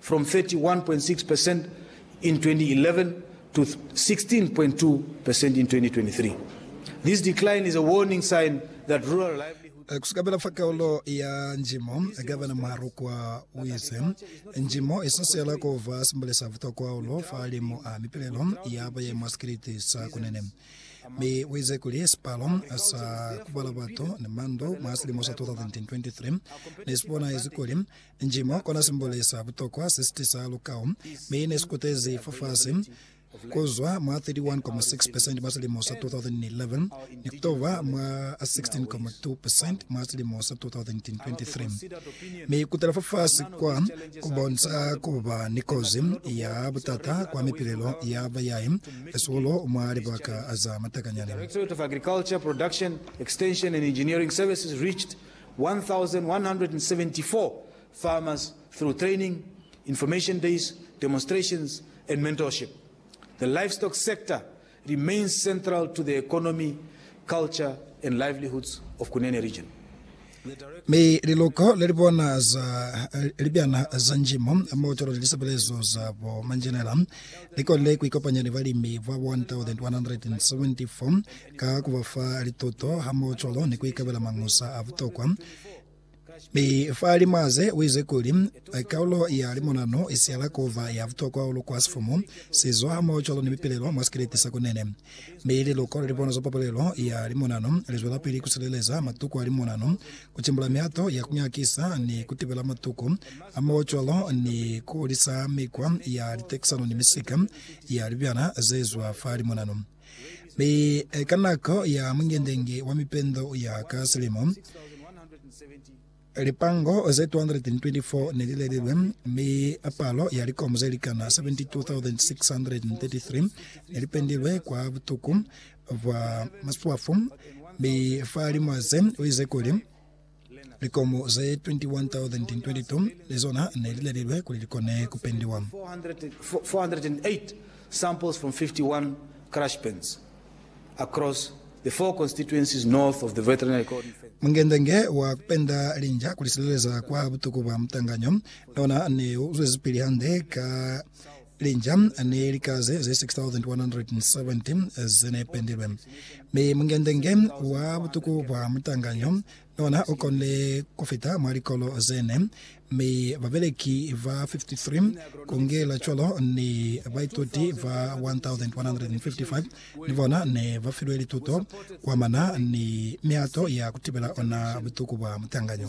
from 31.6 percent in 2011 to 16.2 percent in 2023. This decline is a warning sign that rural livelihood. Eh, kusukabela fa kaulo ya njimo, Gavana Muharukwa uize, Njimo isasela kuba simbole sa butokwa hahulu fa limu a mipilelo ya bayai mwa sikiliti sa Kunene. Mi uize kuli sipalo sa kubala batu ni mandu mwa silimo sa 2023 nesibonahezi kuli Njimo kona simboli sa butokwa se sitisa lukau, mi ne sikutezi fafasi kuzwa mwa 31.6 percent mwa silimo sa 2011 ni kutoba mwa 16.2 percent mwa silimo sa 2023. Mi kutela fafasi kwa kubonisa kuba ni kozi ya butata kwa mipilelo ya bayai, hasuhulu mwa libaka za matakanyani. 1174 farmers through training, information days, demonstrations and mentorship. The livestock sector remains central to the economy, culture and livelihoods of Kunene region. Mi liluko le li bona za libyana za njimo mo cwalo ni lisebelezo za bo manjenela li konile ku ikopanya ni balimi ba 1174 Ka ku ba fa lituto hamohocwalo ni ku ikabela mañusa a butokwa, mi fa lima ze u ize kuli, Kaulo ya limonano i siyala ku ba ya butokwa hahulu kwa sifumu, sizo hamohocwalo ni mipilelo mwa sikeleti sa kunene. Mi liluko le libono za papalelo ya limonano li zwelapili ku sileleza matuku a limonano, ku timbula mihato ya ku nyakisa ni ku tibela matuku, hamohocwalo ni ku hulisa mikwa ya litekisano ni misika ya libyana ze zwa fa limonano. Mi ka nako ya mungendenge wa mipendo ya ka silimo, lipango ze 224 ne li lelilwe, mi palo ya likomo ze likana 72,633 ne li pendilwe kwa butuku bwa maswafu. Mi fa limo ze, u ize kuli, Likomu ze 21,022 ni zona ne li lelilwe kuli li kone ku pendiwa. 408 samples from 51 crush pens across the four constituencies north of the Veterinary Cordon Fence. Mungendenge wa ku penda linja ku li sileleza kwa butuku bwa mutanganyo ne ona ne u zwezipili hande ka Linja ni likaze ze 6,170 ze ne pendilwe, mi mungendenge wa butuku bwa mutanganyo nona u konile ku fita mwa likolo ze ne, mi babeleki ba 53 ku ngela cwalo ni baituti ba 1,155 ni bona ne ba filwe lituto ku amana ni mihato ya ku tibela ona butuku bwa mutanganyo.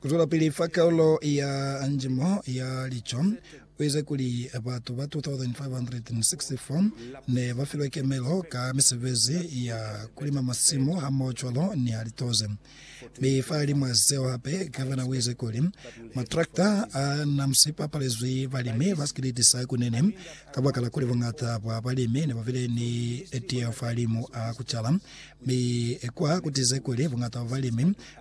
Kuzwelapili fa kaulo ya njimo ya lico kuize kuli batu ba 2,564 ne ba filwe kemelo ka misebezi ya kulima masimu hamohocwalo ni ya litoze. Mi fahalimwa zeo hape, gavana uize kuli matrakta a na sipapalezwi balimi ba sikiliti sa kunene kabakala kuli buñata bwa balimi ne bubile ni tiyeho fahalimu a kucala, mi kwa kutize kuli buñata bwa balimi